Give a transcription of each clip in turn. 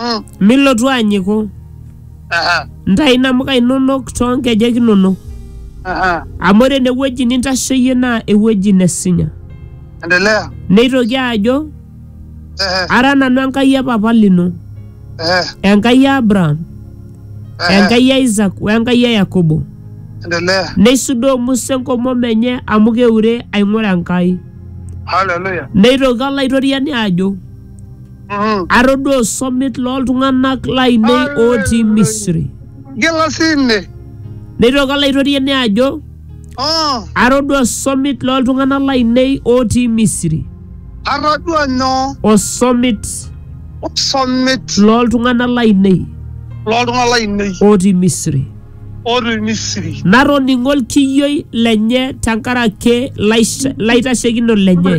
Mm. milotu anyiku Aha. ntayu inamuka inonok too nkejek inonok Aha. amu ore ene wueji nintasheyie naa ewueji nesinya Endelea. neitoki ajo Ehe. ara nanu enkai e papa lino Ehe. enkai e abraham Ehe. enkai e isak we enkai e yakobo Endelea. neisudoo musa enkomom enye amu keure aing'ura enkai Haleluya. neitoki olaitoriani ajo Mhm. atodua osomit looltung'anak lainei ootii Misri. Gila sinne. Neitoki olaitoriani ajo, Oh, atodua osomit looltung'anak lainei ootii Misri. atodua nyoo? Osomit Osomit looltung'anak lainei loltung'anak lainei ootii Misri. otii Misri. Natoning'o olkiyioi lenye tenkaraki laish- laitashekinok lenye.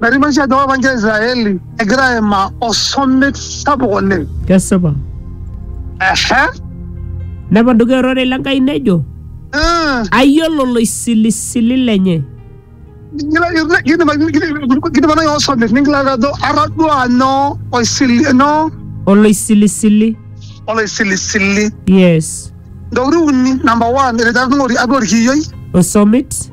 Merimaisha ajo ore ninche Israeli egira aimaa osomit sapuk oleng. kesipa Ehe. nepaduka ororei le Nkai nejo Ah, ayiolo loisilisili lenye kila- kila- kidim- kidim- kidim nai osomit ningilata ajo atadua nyoo oisili nyoo oloisilisili oloisilisili. yes Ntokitin uni, number one, etejo atung'ori atua orkiyioi. osomit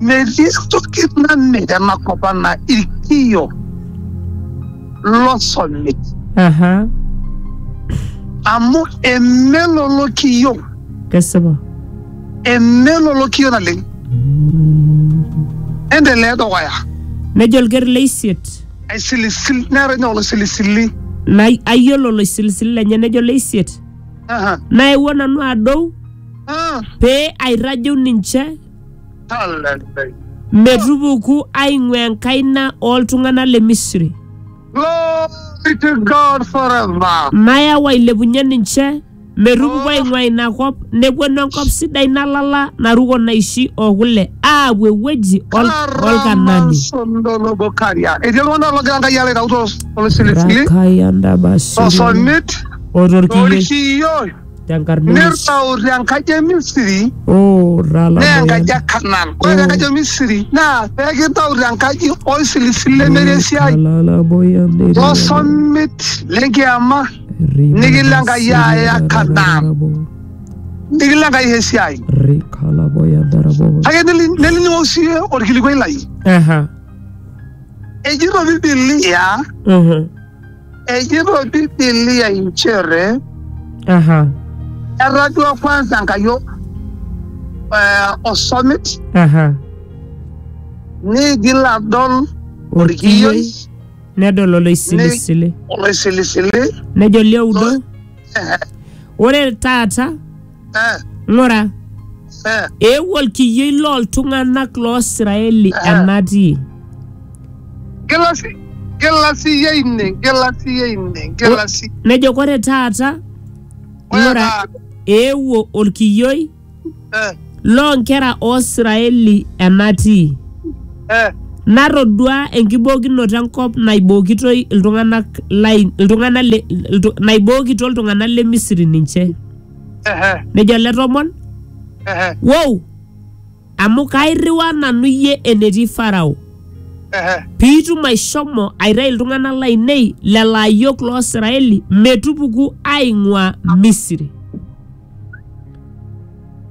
Melistokit na mega na kopa na ikiyo. Losomit. aha Amu emelolo kiyo. kesipa Emelolo kiyo na ling. Endelea dukuya. nejo olker le isiet Aisilisil nera nyolo silisili. na ayiolo oloisilisili lenye nejo le isiet Aha. naewuo nanu adou Ah. pee airrajeu ninche talentei. metupuku aing'ua enkaina ooltung'anak le Misri. Glory to God forever. Nayau ailepunye ninche metupuku aing'ua ina kop nepuonu enkop sidai nalala naruko naishi o kule aapuo ewueji ol- olkanani. Sondolobokaria. Etii iltung'anak loogira Enkai alo aitau to- tolosilisili, Rakaya ndabasiri. tosolmit, o torkiyo. torkiyo. tenkarna e Yesu. nirrau te nkaji e Misiri Oh, naa ralabayan. enkaji e Kanan. Ore te nkaji e Misiri naa peekintau te nkaji oisilisilu lemere esiai Ralabayan. tosomit lenkiama nikilo Enkai aaya Kanaan. nikilo Enkai aisho esiai. Rikalabayan darabo. Kake neli- nelining'o sii orkilikuai lai. Aha. Ejito Bibilia Aha. Ejoito Biblia inchere Aha. era duo kwanza Enkai o- eh, osomit Aha. niigil adol orkiyioi Nedol oloisilisili. oloisilisili Nejo lioudo. Ore taata Eh, ng'ura eh, eewuo olkiyioi looltung'anak loo Israeli Ah. enatii gila si- gila siiyie ine, gila siiyie ine, gila si- nejo kore taata ore ng'ura taata, eewuo olkiyioi eh, loo nkera oo Israeli enatii eh, natodua enkibookinoto enkop naibookitoi iltung'anak lain iltung'anak le iltu- naibookito iltung'anak le Misri ninche Ehe, nejo ele tomon ehe, wow amu kairriwaa nanu iyie enetii farao ehe. piitum aishomo aitayu iltung'anak lainei lelo ayiok loo Israeli metupuku aing'ua Misri.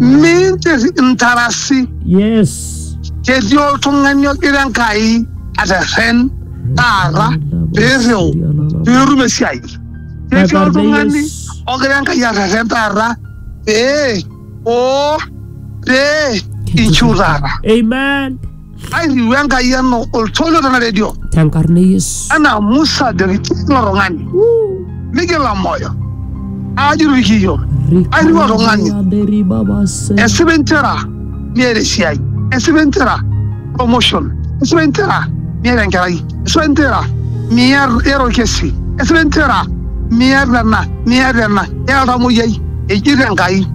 minche intarasi yes ketii oltung'ani ogira enkai aterren taata peirriu peetum esiai ketii oltung'ani ogira enkai aterren taata pee oo pee inchiu taata amen airriu Enkai eno oltoilo tena redio Tenkarna e Yesu. anaa Musa deriki ilo tung'ani migila moyo aajur ikiyo airriu oltung'ani Aderi baba se. esipa entera niata esiai esipa entera promotion esipa entera niata enkerai esipa entera miata orkesi esipa entera miata ena miata ena iata oltamoyiai eji tenkai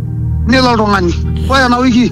nelo oltung'ani ore ena wiki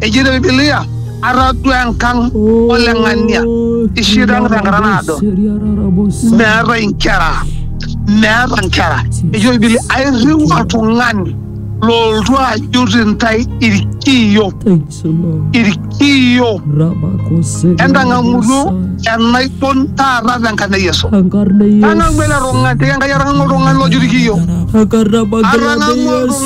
Ejeito Biblia, atadua enkang ole ng'ania ishida tenkata naado meeta inkera meeta inkera ejo bibili airriu oltung'ani looltu ajut intae irkiyo irkiyo entang'amutu enaibon taata tenkarna e yesu tang'amu ele tung'ani tikenkai atang'amu oltung'ani lojut irkiyo atang'amu oltung'ani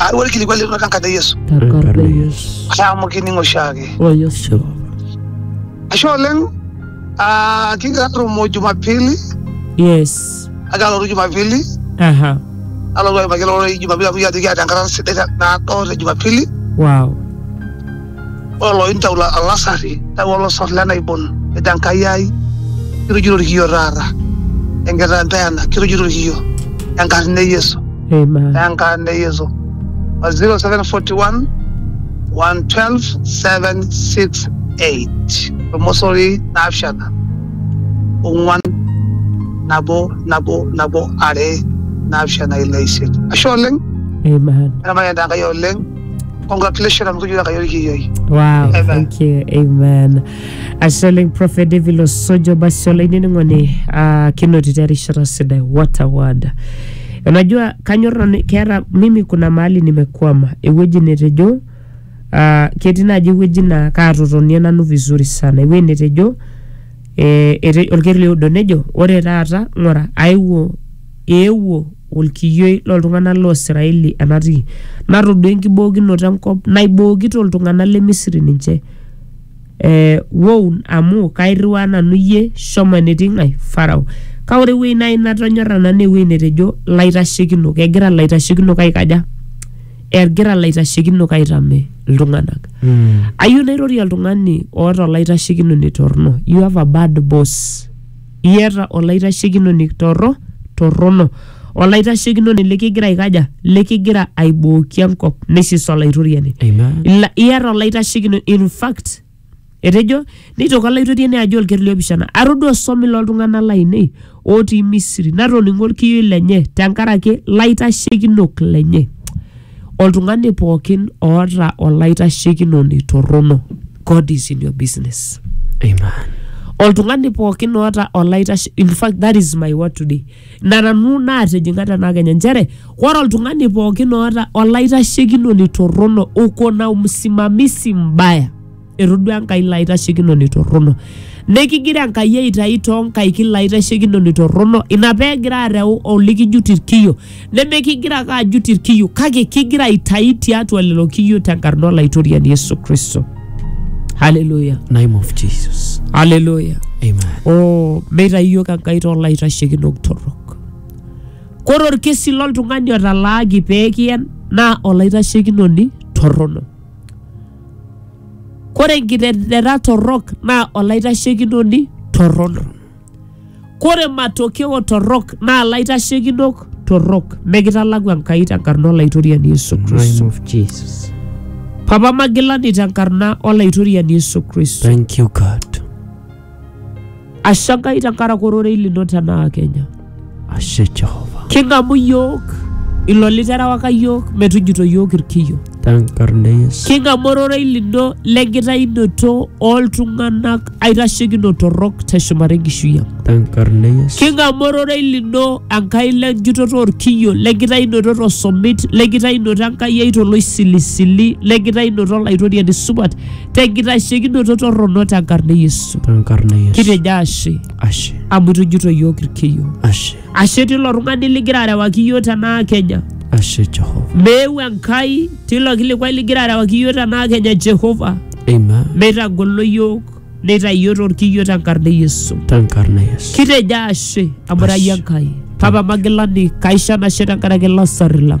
Aareu olkilikuai lino tenkata e Yesu. Tenkata e Yesu. Ashe amu kining oshiake. O Yesu. Ashe oleng ah, kigira atumo Jumapili, Yes. agira alotu Jumapili, Aha. alotu aimaki lelo ororei Jumapili amu kijo ajoki kiata enkata sidai te- naado te Jumapili. Wow. Ore looyu ntau olasarri neyau olosor le naibon, nejo Enkai ai, kirujito ilkiyio taata, enkitaa empeana, kirujito ilkiyio, enkarna e Yesu. Amen. Enkarna e Yesu. 0741 112 768 Olmosori naapishana ong'uan nabo nabo nabo are naapishana ile isiet. Ashe oleng, Amen. eramayan te Enkai oleng. congratulations amu kijula kayo kiyioi Wow, Amen. thank you. Amen. Ashe oleng Prophet David Osojo basi olainining'oni uh, kinotito erishata sidai. What a word. Unajua kanyor nanu keeta mimi kuna mahali nimekwama ewueji netejo uh, ketii naaji ewueji naa kaatotonie nanu vizuri sana ewueji netejo eh, ete- olkereri oudo nejo ore taata ng'ura aewuo eewuo olkiyioi loltung'anak loo Israeli enatii natodua enkibookinoto enkop naibookito iltung'anak le Misri ninche eh, woun amu kairriwaa nanu iyie shomo enetii ng'ae Farao kake ore ewueji naaji natonyorra nanu naa ewueji netejo laitashekinok egira laitashekinok aikaja egira laitashekinok aitame iltung'anak Mm. ayieu nairorie oltung'ani oota olaitashekinoni torrono you have a bad boss iyata olaitashekinoni torro torrono olaitashekinoni likigira aikaja likigira aibooki enkop neisisa olaitoriani Amen. Ila- iyata olaitashekinoni in fact etejo neitoki olaitoriani ajo olker liopishana atodua osomi loltung'anak lainei otii misiri natoning'o olkiyioi lenye tenkaraki laitashekinok lenye Oltung'ani pookin oota olaitashekinoni torrono, God is in your business. Amen. Oltung'ani pookin oota olaitashe, in fact that is my word today. Ina nanu naatijing'a tena kenya nchere ore oltung'ani pookin oota olaitashekinoni torrono uko na umsimamizi mbaya etodua enkai ilo aitashekinoni torrono nikigira enkai aitayu toonkaik ilo aitashekinoni torrono ina peegira areu olikijut irkiyo nemekigira ake ajut irkiyo kake kigira aitayu tiatua lelo kiyo tenkarna olaitoriani yesu kristo haleluya Name of Jesus. haleluya Amen. oh, meitayu iyiok enkai toolaitashekinok torrok kore orkesi loltung'ani otalaaki pee kiyen naa olaitashekinoni torrono Kore nkiteng'ena torrok naa olaitashekinoni torrono. Kore matokeo torrok naa laitashekinok torrok. Mikitalaku Enkai tenkarna Olaitoriani Yesu Name Kristo. of Jesus. Papa magilani tenkarna Olaitoriani Yesu Kristo. Thank you, God. ashe nkai tenkaraki ororei lino tenaa kenya Ashe Jehova. king'amu yiok ilo literewaka yiok metujuto yiok irkiyo Tenkarna e Yesu. king'amu ororei lino lenkitainoto oltung'anak aitashekino torrok teshumata enkishui ang Tenkarna e Yesu. king'amu ororei lino enkai lenjutoto orkiyo lenkitainoto tosomit lenkitainoto enkai ai toloisilisili lenkitainoto olaitoriani supat tenkitashekinoto torrono tenkarna e Yesu. tenkarna e Yesu. Kitejo ashe Ashe, amu itujito iyiook irkiyo. ashe, Ashe tilo tung'ani ligira arewaki iyiook tenaa Kenya. ashe Jehova. Meeu Enkai tilo kilikuai ligira arewaki iyiook tenaa Kenya Jehova. Amen. Meitagolo iyiook neitayio torkiyo tenkarna e Yesu. Tenkarna e Yesu. Kitejo ashe amu irayie Enkai. Papa Magilani, kaisho enashe tenkaraki ilasarri lang.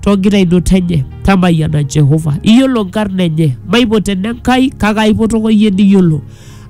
toogira aiduta enye tamayiana Jehova iyiolo nkarna enye maipoto ene Nkai kake aipotoko iyie niyiolo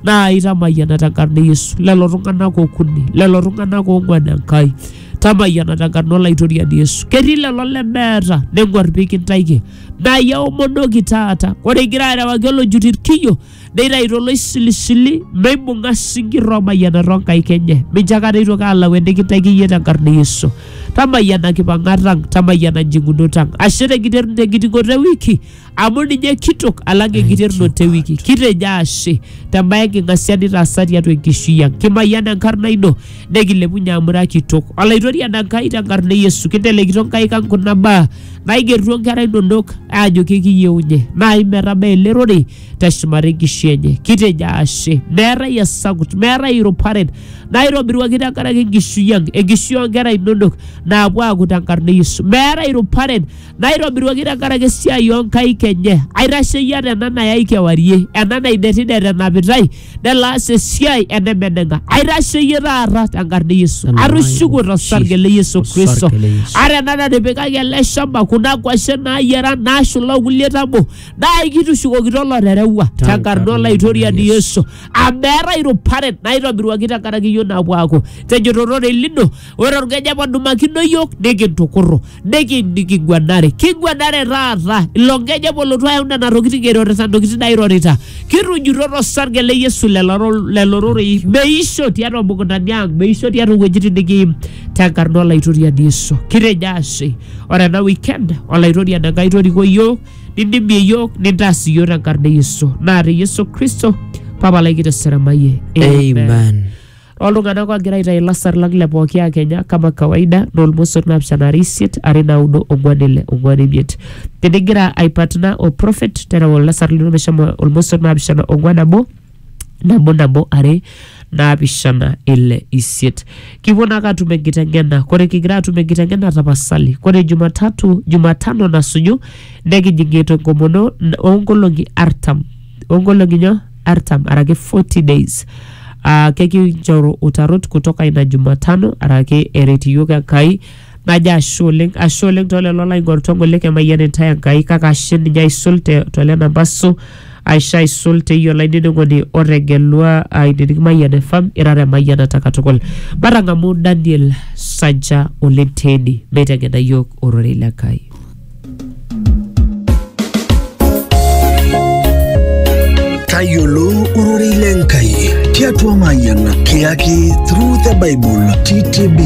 naa itamayiana tenkarna e Yesu lelo tung'anak okuni lelo tung'anak oong'uan Enkai tamayiana tenkarna olaitoriani Yesu ketii lelo lemeeta neng'uar pikintaiki naa iyie aomonoki taata ore igira arewaki olojut irkiyio neitayu toloisilisili neibung'a sinkir oomayiana too nkaik enye mincho akata eitoki alau enikintaiki iyie tenkarna e Yesu tamayiana nkipang'at ang tamayiana njing'unot ang ashe tenkiter- tenkiting'oto e wiki amu ninye kitok alang enkiterrunoto e wiki kitejo ashe tembae enking'asia nitaasa tiatua enkishui ang kimayian enkarna ino nekilepunye amu ira kitok olaitoriani Enkai tenkarna e Yesu kintelekito nkaik ang kuna baa naigerutua nkera inonok aajo kekiyieunye naai metabaa ele rorei teshumari nkishu enye kitejo ashe meetai esakut meetai iruparen naitobiruaki tenkaraki enkishui ang enkishui oonkera inonok naapuo aaku tenkarna e Yesu meetai iruparen naitobiruaki tenkaraki esiai oonkaik enye aitasheyie ata ena nayai kewarie ena naidetidet enapitai nelo aas esiai enemeneng'a aitasheyie taata tenkarna e Yesu Aleluia. atushuku tosarge le Yesu Tosarge Kristo le Yesu. ata ena natipikaki ele shamba kuna kwashen naayiara naashula okulie tabo naa ikitushukokito olotereua Tenkarna tenkarna olaitoriani Yesu. yesu amu meetae iruparet naitobiruaki tenkaraki iyiok naapuo aaku tenjoto ororei lino ore orkeja padumakino iyiok nikintukurru niki- niking'uanare king'uanare taata ilo nkeja polotu ayau nena tokitin eirorita ntokitin nairorita kitujuto tosarge le yesu lelo ro- lelo rorei meisho tiatua mukuntani ang meisho tiatua wuejitin nikiim tenkarna olaitoriani yesu kitejo ashe ore ena weekend olaitoriani enkai toriko iyiok nindimie iyiook nintaas iyiook tenkarna e yesu naa te yesu kristo papa lai kiteseramayie Amen. oltung'anak ogira aitayu ilasar lang le pooki akenya kama kawaida naa olmosor naapishana are isiet are naudo ong'uan ile ong'uan imiet tenigira aipatna o prophet tereu olasar lino meshomo olmosor naapishana ong'uan nabo nabo nabo are naapishana ile isiet kipuo naake atum enkiteng'ena kore kigira atum enkiteng'ena tapasali kore jumatatu jumatano nasuju nekijing etu enkomono n- oonkolong'i artam oonkolong'i nyoo artam araki 40 days uh, kekinchoru utarot kutoka ina jumatano araki eret iyiok enkai Najo ashe oleng, ashe oleng to lelo laing'orita ogol le Kemayian intae Enkai kake ashe ninye aisul te to lena maso aisho aisul te iyie olainining'oni otegelua ainining Mayian FM irara emayianata katukul. Matang'amu Daniel Saja oleng teeni meiteng'ena iyiook ororei le Nkai. tayiolo ororei le Nkai tiatua Mayian kiyaki Through the Bible TTB.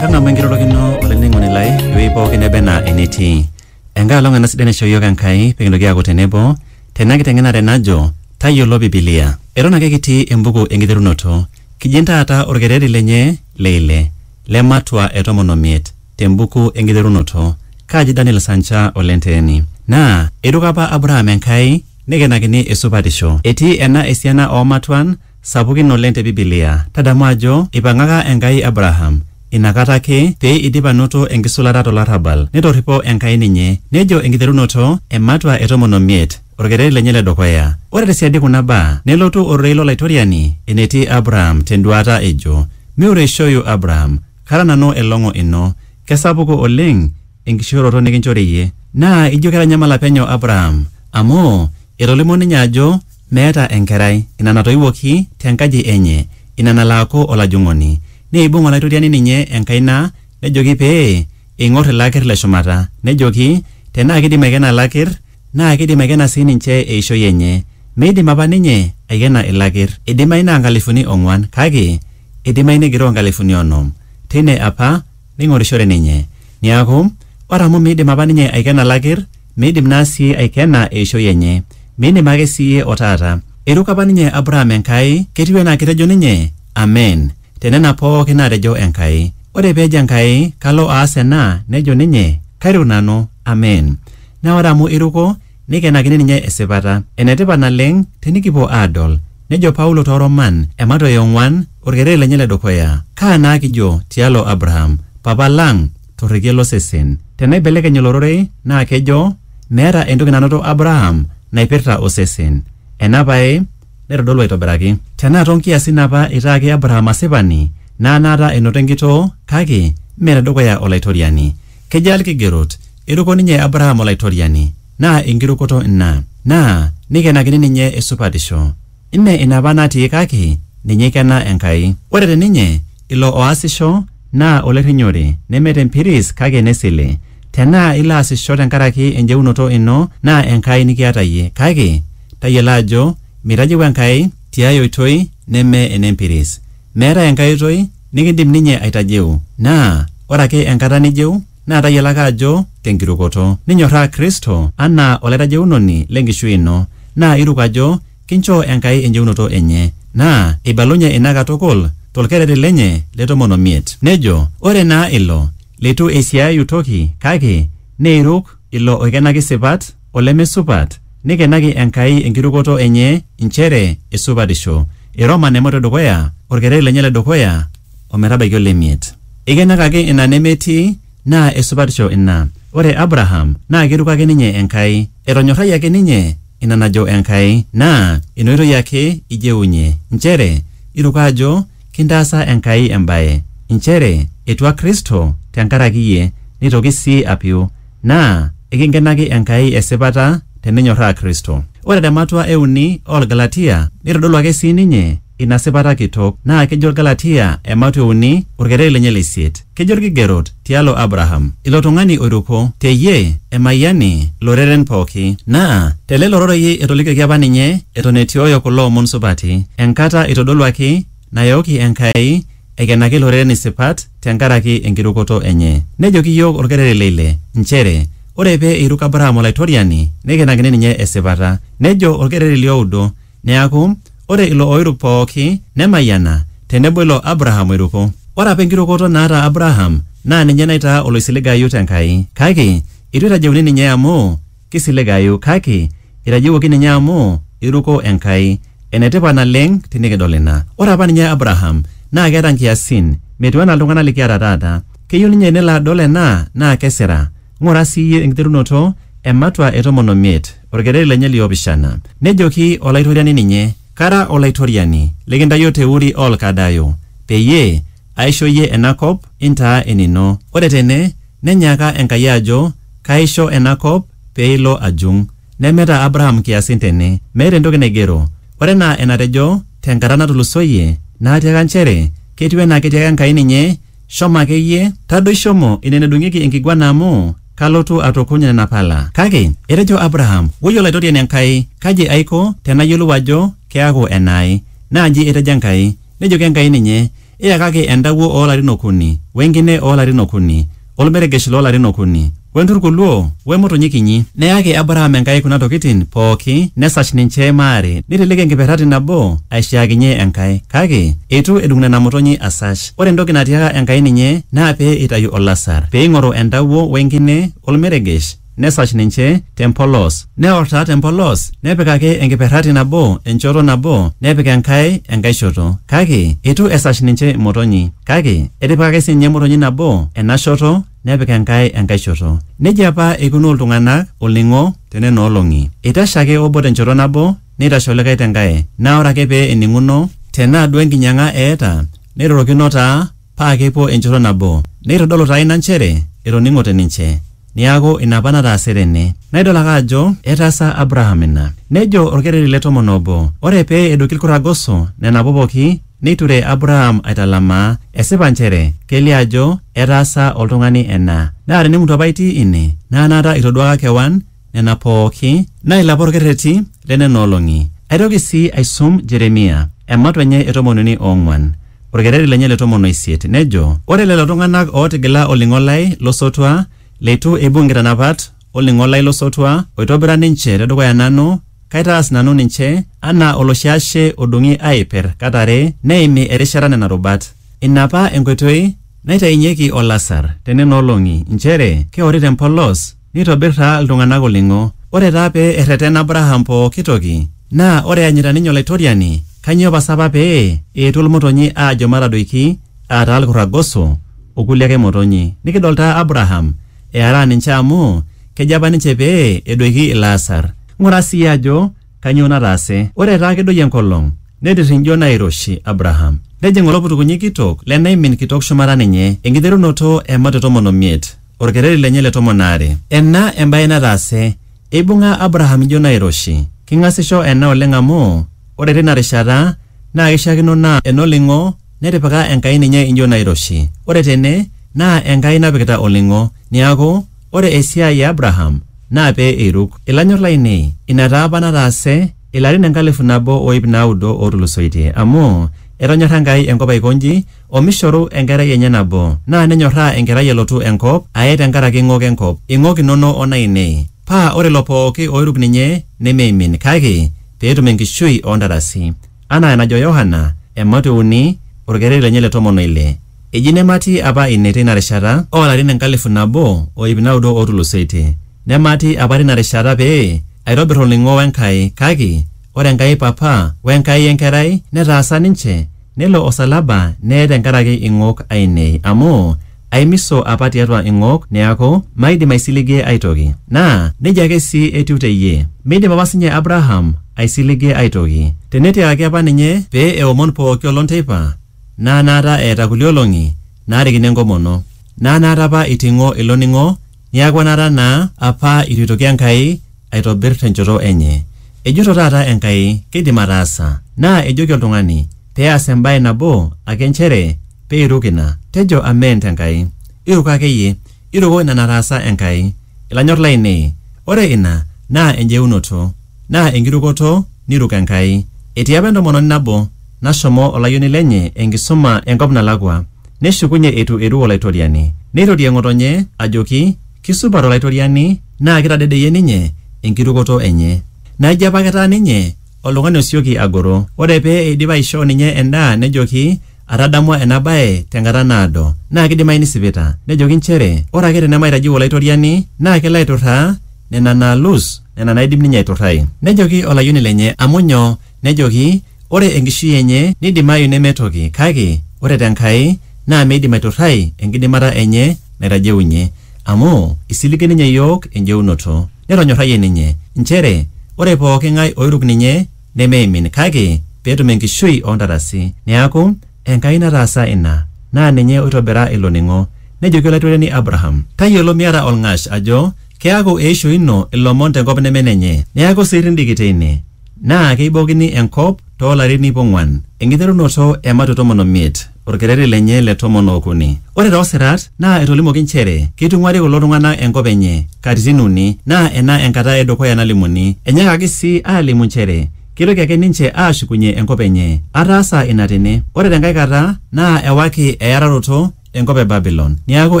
Tadamu enkirorokino olainining'oni lai ewueji pookin neba enaa enetii. Enkae olong ena sidai naishoo iyiook Enkai pee kintoki aaku tenebo tena kiteng'enare najo tayiolo Bibilia. Eton ake kitii embuku enkiterunoto. Kijing taata orkereri lenye le ile le matua e tomon omiet. te mbuku e nkiterunoto, kaji Daniel Sancha o Lenteeni. Naa eiruko apa Abraham Enkai neikenakini esupatisho. Etii ena esiana oo matuan sapukin oleng te Bibilia. Tadamu ajo eipang'aka Enkai Abraham ina kata ake pee eidip anoto enkisulata to larrabal. Netorripo Enkai ninye. Nejo enkiterunoto e matua e tomon o miet, olkereri lenye le dukuya. Ore te siadi kuna baa nelotu ororei lo Laitoriani enetii Abraham te nduaata ejo, Miureishoyu Abraham, Kara nanu elong'o ino, kesapuku oleng enkishooroto nikinchori iyie. Naa ijo ketanyamala penyo Abraham amu etolimuo ninye ajo meeta enkerai, ina natoiwuoki te nkaji enye, ina nalo aaku olajung'oni. Neibung Olaitoriani ninye enkaina nejoki pee eing'or ilo aker le shumata, nejoki, Tenaa keidim aikena ilo aker, Naa keidim aikena sii ninche eishoi enye. Meidim apa ninye aikena ilakir. Eidimayu naa nkalifuni ong'uan, kake eidimayu negiroo nkalifuni onom. Teine apa neing'orishore ninye. Neaku, ore amu meidim apa ninye aikena lakir, meidim naa sii aikena eishoi enye. Mindim ake sii iyie o taata. Eiruko apa ninye Abraham Enkai, ketiu anaa ketejo ninye, Amen, te nena pooki naatejo Enkai. Ore pee ejo Enkai, Kalo aas ena, nejo ninye, Kairuk nanu, Amen. Naa ore amu eiruko, neikenakini ninye esipata. Enetipat naleng tinikipuo aadol. Nejo Paulo too Roman ematua e ong'uan, olkereri lenye le dukuya, Kaa naa kijo tialo Abraham, papa lang, torrekie lo sesen? Tenaibelekeny ilo rorei naa kejo, Meeta entoki nanoto Abraham naipirta osesen. Ena pae naitodolu aitobiraki. Tenaa too nkiasin apa eitaaki Abraham asipani, naa naata enoto enkitoo kake mme te dukuya Olaitoriani. Kejaa ilkigerot? Eiruko ninye Abraham Olaitoriani, naa enkirukoto ina, naa neikenakini ninye esupatisho. Mme ina apa natii kake ninye eikena Enkai. Ore te ninye, ilo oasisho naa olerrinyore, neme te mpiris kake ne sile. Tenaa ilo aasisho tenkaraki enjeunoto ino naa Enkai nikiata iyie, kake tayiolo ajo meitajeu Enkai ti ai oitoi neme ene mpiris. Meetae enkae oitoi nikindim ninye aitajeu, naa ore ake enkata nijeu, naa tayiolo ake ajo te nkirukoto. Ninyorraa Kristo anaa Olaitajeunoni le nkishui ino, naa iruk ajo kinchoo Enkai enjeunoto enye. Naa eibalunye ina katukul to lkereri lenye le tomon o miet. Nejo, Ore naa ilo leitu eisiaayu toki kake neiruk ilo oikenaki sipat, olemesupat, neikenaki Enkai enkirukoto enye inchere esupatisho. Eiroma Nemoto edukuya, olkereri lenye le dukuya o metabaiki ole miet. Eikenakaki ina nemetii, naa esupatisho ina. Ore Abraham naa keiruko ake ninye Enkai. Etonyorrayie ake ninye ina najo Enkai, naa ina oitoi ake ijeunye, inchere iruko ajo kintaasa Enkai embae, inchere etua Kristo tenkaraki iyie, neitoki sii apiu. Naa ekinkenaki Enkai esipata teninyorraa Kristo. Ore te matua e uni oo Lgalatia neitodolu ake sii ninye ina sipata kitok naa kejo Lgalatia ematua e uni olkereri lenye le isiet. Kejo Lkigerot tialo Abraham, ilo tung'ani oiruko, te iyie emayiani loreren pooki. Naa te lelo rorei etolikioki apa ninye eton etiooyo kulo omon supati, enkata eitodoluaki nayooki Enkai Eikenaki iloreren isipat te nkaraki enkirukoto enye. Nejoki iyiook olkereri le ile nchere ore pee eiruk Abraham Olaitoriani neikenakini ninye esipata. Nejo olkereri li oudo, Neaku, ore ilo oiruk pooki nemayiana tenebo ilo Abraham oiruko. Ore apa enkirukoto naata Abraham naa ninye naitaa oloisiligayu te Nkai. Kake eitu eitajeuni ninye amu Keisiligayu kake eitajiwuoki ninye amu eiruko Enkai. Enetipat naleng tinikidol ina. Ore apa ninye Abraham naa keeta nkiasin metiu anaa iltung'ana likiata taata. Keyieu ninye nelo adol ena naa kesira. Ng'ura sii iyie enkiterunoto ematua e tomon omiet, olkereri lenye li opishana. Nejoki Olaitoriani ninye, Kara Olaitoriani likintayio te Uri oo Lkaldayo peyie aisho iyie ena kop intaa enino. Ore tene, nenyaaka Enkai ajo, Kaaisho ena kop pee ilo ajung. Nemeeta Abraham nkiasin tene. Meeta entoki naigero. Ore enaa enatejo te nkata natulusoyie, naatiaka nchere ketiu enaa ketiaka Enkai ninye, Shomo ake iyie, tadoi shomo ine nedung'ieki enkiguana amu kalotu atukuny nena pala. Kake etejo Abraham, Woi Olaitoriani Enkai, kaji aiko tenayiolou ajo keaku enaai? Naa nji etejo Enkai, Nejoki Enkai ninye, Iyakaki entawuo oo larin okuni, o enkine oo larin okuni, o olmeregesh loo larin okuni, o enturkuluo, o emotonyi kinyi. Neyaki Abraham Enkai kuna tokitin pooki nesash ninche maare, neiteleki enkiperrati nabo aishiaakinye Enkai, kake eitu edung nena motonyi asash. Ore entoki natiaka Enkai ninye naa pee eitayu olasar, pee eing'oru entawuo o enkine o olmeregesh, nesash ninche tempolos neor taa tempolos nepikaki enkiperrati nabo enchoto nabo nepik enkae enkae shoto kake eitu esash ninche imotonyi kake etipikaki sinye emotonyi nabo ena shoto nepik enkae enkae shoto nejia apa eikunaa oltung'anak olning'o tenena olong'i eitashe ake obo tenchoto nabo neitashe olikae tenkae naa ore ake pee ening'uno tenaa duo enkinyang'a eeta neirorokino taa paa kepuo enchoto nabo. Neitodolu taa ina nchere etoning'ote ninche. Neaku, ina apa nataasa Irene. Naa idol ake ajo etaasa Abraham ina. Nejo olkereri le tomon obo, Ore pee edoiki ilkurrak goso, nenapu pooki, neiture Abraham aitalamaa, esipa nchere kelio ajo etaasa oltung'ani ena. Naa tenemutu apa itii ine, naa anaata itoduaaka kewan, nena pooki nailapa olkerreti le nena olong'i. Aitoki sii aisum Jeremia, ematua enye e tomon uni o ong'uan, olkerreti lenye le tomon o isiet, nejo, Ore lelo tung'ana ootigila olning'o lai lo sotua, leitu eibung nkitanapat o lning'o lai lo sotua oitobira ninche te dukuya nanu, kaitaas nanu ninche anaa oloshi ashe odung'i aaiper kat are neimi erishata nena rubat. Ina apa enkoitoi naitainyeki olasar te nena olong'i, nchere keori te mpolos. Neitobir taa iltung'ana olning'o. Ore taa pee erretena Abraham pooki toki, naa ore eanyita ninye Olaitoriani, kainyoo pasa apa pee eetuo ilmotonyi aajo matadoiki, aa taa ilkurragoso, o kulie ake motonyi? Nikidol taa Abraham earaa ninche amu kejo apa ninche pee edoiki ilaasar. Ng'ura sii ajo kainyoo nataase. Ore taa kedoyio enkolong, netirrinjo nairoshi Abraham. Nejing oloputukunyi kitok le naimin kitok shumata ninye, enkiterunoto e mat e tomon o miet. Olkereri lenye le tomon aare. Ena embae nataase, eibung'a Abraham ijo nairoshi. King'asisho ena oleng amu ore teina rishata naa keishiakino naa enoling'o netipika Enkai ninye ijo nairoshi. Ore tene naa Enkai napikita oling'o. Niaku, ore esiai e Abraham naa pee eiruk. Ilanyor lainei, ina taa apa nataase ilarin enkalifu nabo o iip naudo ootulusoitie. Amu, etonyorra Enkai enkop aiko inji omishoru enkerai enye nabo, naa nenyorraa enkerai elotu enkop aye te nkaraki ing'ok enkop, ing'ok inono o naainei, paa ore lelo pooki ooiruk ninye nemeimin, kake pee etum enkishui oo ntarasi. Anaa enajo Yohana, ematua e uni, olkereri lenye le tomon o ile. Eji nematii apa ine teina rishata oo larin enkalifu nabo o iip naudo ootulusoitie. Nematii apa teina rishata pee aitobir olning'o we Nkai, kake ore Enkai Papa we Enkai e Nkerai netaasa ninche, Nelo osalaba neye tenkaraki ing'ok aainei, amu aimiso apa tiatua ing'ok neaku maidim aisiligie ai toki. Naa neijia ake sii etiu te iyie. Meidim apa sii ninye Abraham aisiligie ai toki. Tenetiakaki apa ninye pee eomon pooki olong teipa, naa naata eeta kulie olong'i naarikino enkomono, naa naata apa eiting'o ilo ning'o Niaku enaata naa apa eitu eitoki Enkai aitobir tenchoto enye. Ejoito taata Enkai keidim ataasa. Naa ejoki oltung'ani pee eas embae nabo ake nchere pee eiruk ina. Tejo Amen te Nkai. Iruko ake iyie. Iruko ina nataasa Enkai. Ilanyor laainei. Ore ina naa enjeunoto. Naa enkirukoto niruk Enkai. Etii apa entomononi nabo nashomo olayioni lenye enkisuma enkop nalakua. Neshukunye eitu eiruk Olaitoriani. Neirorie ng'otonye ajoki kisupat Olaitoriani naa kitadedeyie ninye enkirukoto enye. Naa ijo apake etaa ninye oltung'ani osioki agoro. Ore pee eidip aishoo ninye endaa nejoki Atadamua ena bae tenkata naado. Naa keidimayu nisipita. Nejoki nchere ore ake tenemaitajeu Olaitoriani naa kelo aiturraa nena naalus nena naaidim ninye aiturrai. Nejoki olayioni lenye, Amu nyoo? Nejoki, Ore enkishui enye neidimayu neme toki kake ore te Nkai naa meidim aiturrai enkidimata enye naitajeunye. Amu eisilige ninye iyiook enjeunoto. Netonyorrayie ninye. Nchere ore pooki ng'ae oiruk ninye nemeimin kake petum enkishui ontarasi. Neaku, Enkai nataasa ina. Naa ninye oitobira ilo ning'o. Nejoki Olaitoriani Abraham, Tayiolo miata olng'ash ajo keaku eisho ino ilomon tenkop neme enenye. Neaku sii irrindiki teine. Naa keibookini enkop too larin iip ong'uan, enkiterunoto e matu tomon o miet. Olkereri lenye le tomon o okuni. Ore too sirat naa etolimuoki nchere keitung'uari kulo tung'ana enkop enye katitin uni naa ena enkata e dukuya nalimuni. Enyaakaki sii aalimu nchere keitoki ake ninche aashukunye enkop enye. Ataasa ina tene. Ore te nkae kata naa ewaki eyararoto enkop e Babilon. Neaku,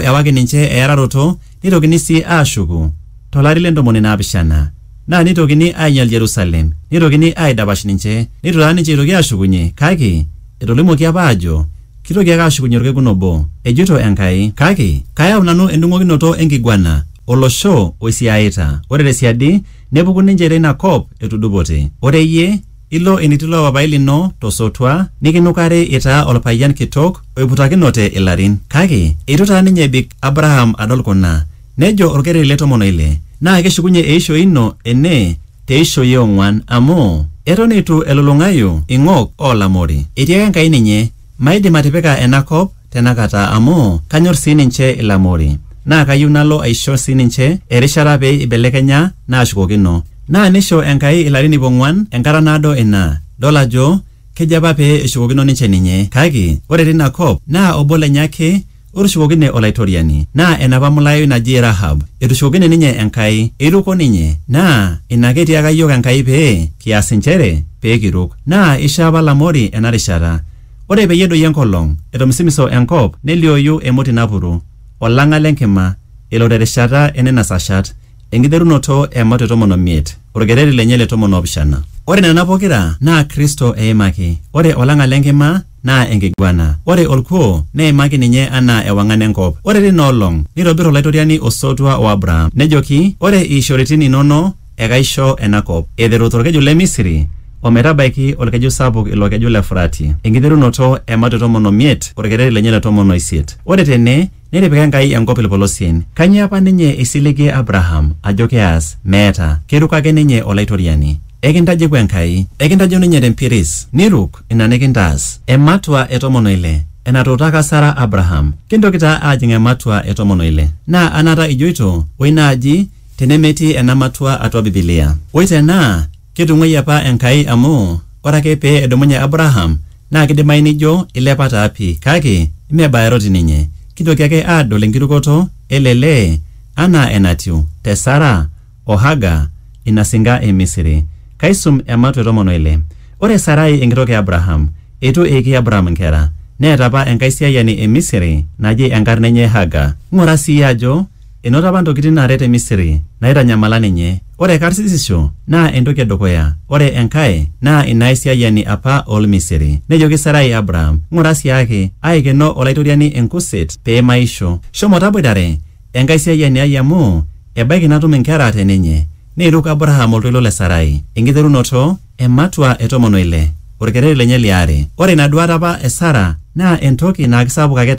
ewaki ninche eyararoto. Neitokini sii aashuku to lari le ntomoni naapishana, naa neitokini aainyal Jerusalem, neitokini aaidapash ninche, neitu taa ninche eitoki aashukunye, kake etolimuoki apa aajo keitoki ake aashukunye olkekun obo, ejoito Enkai, kake kayau nanu endung'okinoto e nkiguana o losho oisiaaita, ore te siadi nepuku ninche te ina kop etudupote. Ore iyie, Ilo enetii ilo papaai lino to sotua nikinukari itaa olpayian kitok oiputakinote ilarin. Kake eitu taa ninye ebik Abraham adol kuna. Nejo olkereri le tomon o ile, Naa keshukunye eishoi ino ene te ishoi e ong'uan, amu eton eitu elulung'ayu ing'ok oo lamori. Etiaka Enkai ninye, Maidim atipika ena kop tenakata amu kanyor sii ninche Ilamori naa kayieu nalo aisho sii ninche erishata pee eibelekenya naashukokino. Naa neisho Enkai ilarin iip ong'uan, enkata naado ina, dol ajo kejo apa pee eshukokino ninche ninye. Kake ore teina kop naa obo lenye ake Otushukokine Olaitoriani, naa enapa mulayoi naji Rahab, etushukokine ninye Enkai, eiruko ninye, naa ina ake etiaka iyiook Enkai pee kias inchere pee kiruk. Naa eisho apa Lamori ena rishata. Ore peyie edoyio enkolong, etomisimiso enkop neliooyu emoti napuru, olang'a le nkima, elo te rishata e nena sashat, enkiterunoto e Mato e tomon o miet, olkereri lenye le tomon o opishana. Ore nena pokira naa Kristo eimaki. Ore olang'a le nkima. naa enkiguana. Ore olkuoo neimaki ninye anaa ewang'an e nkop. Ore teina olong neitobir Olaitoriani osotua o Abraham, nejoki, Ore iishoritin inono ekaisho ena kop, eiteru to lkeju le Misiri o metabaiki olkeju sapuk ilo keju le Furati, enkiterunoto e mat e tomon o miet o olkereri lenye le tomon o isiet. Ore tene, Netipika Enkai enkop ilpolosien. Kanyoo apa ninye eisiligie Abraham ajo keas? Meeta. Keiruk ake ninye Olaitoriani. Ekintajeku Enkai. Ekintajo ninye te mpiris. Niruk ina nikintaas. Ematua e tomon o ile. Enatuutaka Sara Abraham. Kintoki taa aajing ematua e tomon o ile. Naa anaata ijoito, oi naaji te nemetii ena matua atua Bibilia. Oi te naa ketung'uayie apa Enkai amu ore ake pee edumunye Abraham Naa keidimayu nijo eilepa taa pii kake mme bayaroti ninye. Kintoki ake aadol enkirukoto ele lee anaa enatiu te Sara o Haga ina singa e Misiri. Kaisum ematu e tomon o ile. Ore Sarai enkitok e Abraham, eitu eiki Abraham nkera, neeta apa enkaisiayiani e Misiri naji enkarna enye Haga. Ng'ura sii iyie ajo Enoto apa ntokitin naaret te Misiri naaitanyamala ninye. Ore karsisisho naa entoki e dukuya, ore enkae naa ina aisiayiani apa oo Lmisiri. Nejoki Sarai Abraham, Ng'ura si ake, aaikeno Olaitoriani enkuset pee maisho. Shomo taboitare enkaisiayiani ai amu ebaiki natum inkera te ninye. Neiruk Abraham oltoilo le Sarai. Enkiterunoto e matua e tomon o ile. Olkereri lenye li are. Ore ina duaata apa e Sara naa entoki naa kisapuk ake taata.